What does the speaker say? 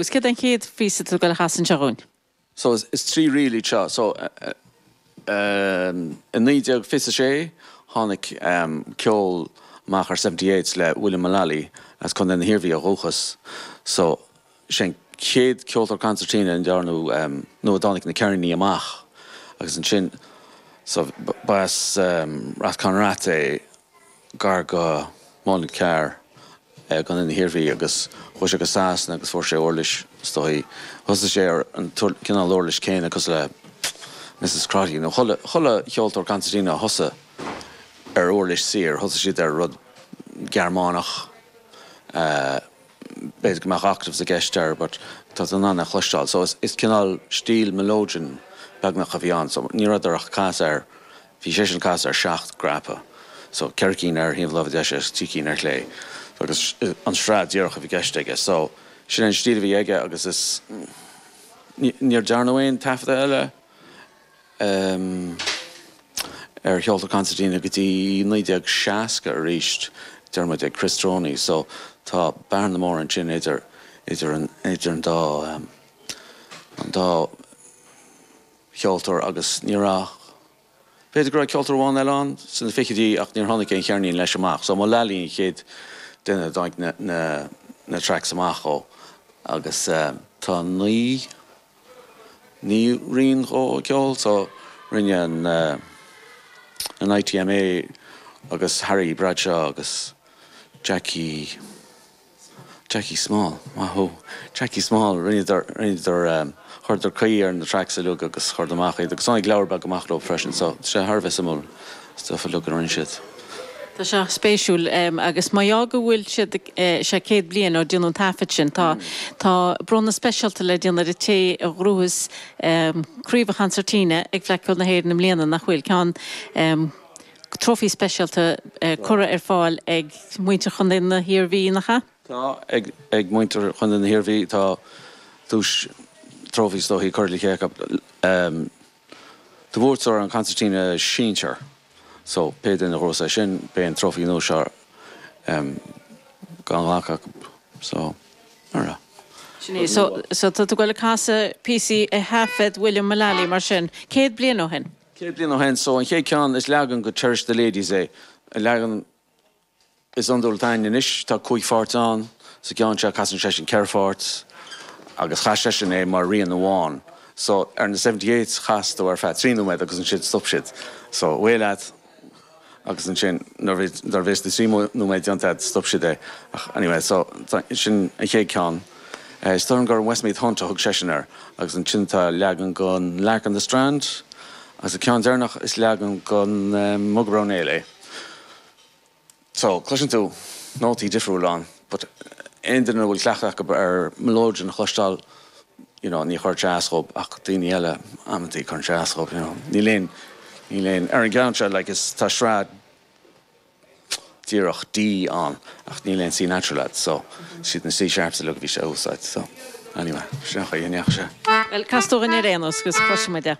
Agus céard é an chéad phíosa atá tú ag goil a chasadh anseo dhúinn? So is trí ríl iad seo. So i naoi déag fiche a sé tháinig ceol amach ar Seventy Eights le William Mullally as Contae na hIarmhí ó dhúchas. So sé an chéad ceoltóir concertina a ndearnadh nó a dtáinig na ceirníní amach agus ansin so ba as Rathconrath é. gar go Muileann Cearr i gContae na hIarmhí agus chuaigh sé go Sasana agus fuair sé uirlis, is dóichí. Thosaigh sé ar an cineál uirlis céanna cosúil le Misses Crotty nó chuile cheoltóir cansairtín a thosaigh ar uirlis saor, thosaigh siad ar rud Gearmánach, b'fhéidir go mbeadh octaves i gceist air but tá tú in ann é a chloisteáil so is cineál stíl melodeon beagnach a bhí ann so ní rabhadar ach ag casadh ar Bhí seisean ag casadh ar sheacht gcnaipe, so ceithre cinn ar thaobh an láimhe deise agus trí cinn ar chlé, so agus an sraith díreach a bhí i gceist aige, so sin an stíl a bhí aige agus is níor dearnadh aon taifeadadh eile ar cheoltóir Concertina go dtí 1960 arís, deir muid ag Chris Droney, so tá bearna mór ansin idir an dá, an dá. cheoltóir agus ní raibh, b'fhéidir go raibh ceoltóir amháin eile ann sna fichidí ach níor tháinig aon cheirnín leis amach so Mullally an chéad duine a dtáinig na tracks amach dhó agus tá naoi, naoi rian dhó ag ceol so rinne an, an ITMA agus Harry Bradshaw agus Jackie. Jackie Small, maith thú. Jackie Small, rinneadar, rinneadar, chuireadar caoi ar na tracks uilig agus chuireadar amach iad agus tháinig leabhar beag amach leo freisin so tá sé thar a bheith suimiúil stuff uilig a rinne siad. Tá sé spéisiúil agus mar gheall go bhfuil siad ag, sé céad bliain ó déanadh an taifead sin tá, tá bronnadh speisialta le déanamh ar an té a ghnóthós craobh an chansairtíne ag Fleadh Cheoil na hÉireann i mbliana nach bhfuil, ceann. Trófaí speisialta curtha ar fáil ag muintir Chontae na hIarmhí, nach ea? Tá, ag muintir Chontae na hIarmhí. Tá duais, trófaí is dóichí, curtha le chéile acu do bhuaiteoir an Concertina Sinsear. So, pé duine a ghnóthós é sin, beidh an trófaí nua seo á ghlacadh acu. So, mar a. Sin é. So, tá tú ag goil ag casadh píosaí a thaifead William Mullally, mar sin, céad bliain ó shin? Céad bliain ó shin, so an chéad ceann is leagan de Cherish the Ladies é an leagan is iondúil atá againn anois. Tá cúig pháirt ann. Sa gceann seo casann seisean ceithre pháirt agus chas seisean é mar rian amháin. So ar na 78 chasadar ar feadh trí nóiméad agus ansin stop siad. So away leat. Agus ansin, nuair a bhí, nuair a bhí na trí nóiméad déanta agat, stop siad é. Ach anyway, so, sin an chéad ceann. Eh, is dóigh liom gur Westmeath Hunt a thug seisean air. Agus ansin tá leagan dhon Lark on the Strand. Agus an ceann deireanach, is leagan dhon, eh, Bucks of Oranmore é. So, cloiseann tú nótaí difriúla ann. but aon duine a bhfuil cleachtadh acu ar mileoidean a chloisteáil you know ní chuirfidh sé as dhób ach daoine eile amantaí cuireann sé as dhób you know níl aon níl aon ar an gceann seo like tá sraith díreach D ann ach níl aon C natural ann so siad na C sharps uilig a bhí sé a úsáid so anyway sin an chaoi a ndeachaigh sé. Bhuel, cas dúinn é ar aon nós agus cloisfidh muid é.